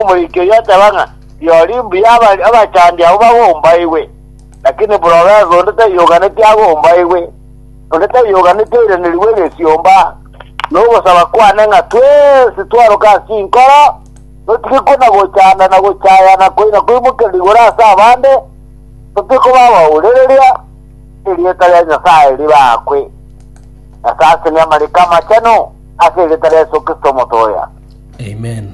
Omoikeri ateba ng'a rirorio mbuya aba- abachandi abwo bagombaigwe, lakini Provensi onde taiyoganetie agombaigwe, onde taiyoganetie oiranerigwe egesiomba. Na ogosaba kwane ng'a twensi twaroke ase chinkoro, totige kona gochanda na gochayana koina koimokerire igoro ase abande, totige koba abaurereria, erieta ria Nyasae ribe aakwe. Nyasae asenie amariko amachenu ase erieta ria Yeso Kristo Omotoya. Amen.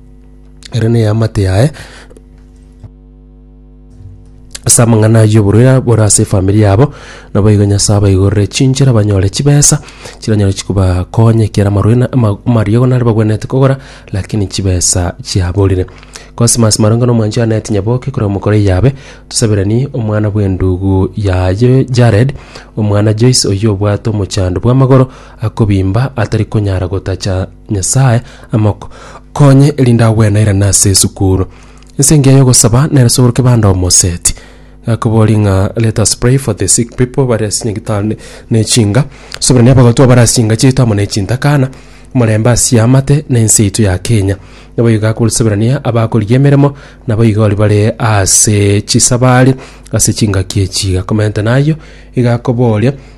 ere neamate yaye ase amang'ana ayio oborwaire bore ase efamiri yabo, naboigo Nyasae abaigorere chinchera banyore chibesa chiranyare chibakonya ekiagera amarwaire na ama- amariogo nari bagwenerete kogora lakini chibesa chiaborire. Cosmas Maronge na omwancho Annet Nyaboke korwa Mokoro Iyabe, tosaberanie omwana bw'endugu yaye Jared, omwana Joyce oyio obwate omochando bw'amagoro akobimba atari konyara gotacha Nyasae amoko konye erinde agwenairane ase esukuru. Ense engiya y'ogosaba nere sogoroke bande omoseti. Gakobori ng'a let us pray for the sick people bari ase nyagitari ne- ne chinga. Soberania abagotwa bare ase chinga chiaito amo ne chintakana. Omorembe ase amate na ense yaito ya Kenya. Naboigo gakosoberania abakorigia emeremo naboigo ori bare ase chisabari ase chingaki echi. Gakomentana ayio igakoboria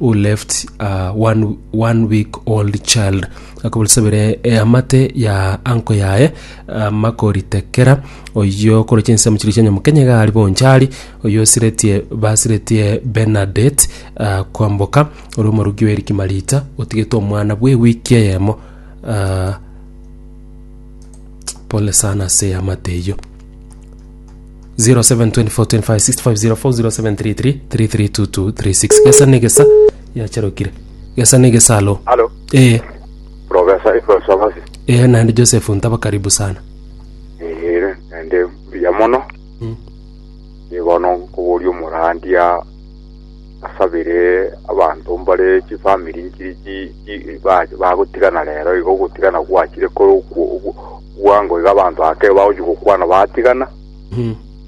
who left a one, one week old child akoborisabere eamate ya anko yaye amakoritekera oyio koroche ensemo chiria chia nyamokenya iga ari bonchari oyio osiretie basiretie Bernadette ah, kwamboka ore omoruki wa eriki marita otigete omwana bwe wiki eyemo ah, pole sana ase eamate eyio 0724256504 gesa negesa yacharokire gesa negesa alo Halo, ee Profesa Iko Sabasi. ee naende joseph ntaba karibu sana Ere, naende mbuya mono. Mm. Nibono nkoboria omorandia asabire abanto mbare chifamiri nchiri chi chi ba- bagotigana rero igo ogotigana gwachire kore okwo- okwo- Bwango iga abanto aba kebao bagochia gokwana batigana,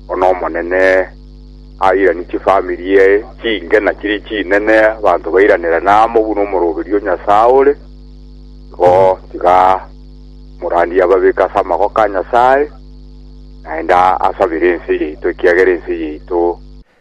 bono n'Omonene airanie chifamiri eee chingena chiria chinene, abanto bairanirane amo buna omoroberio o Nyasae ore. Igo tiga omorandia ababeke ase amagoko a Nyasae, naende asabere ense yaito, ekiagera ense yaito.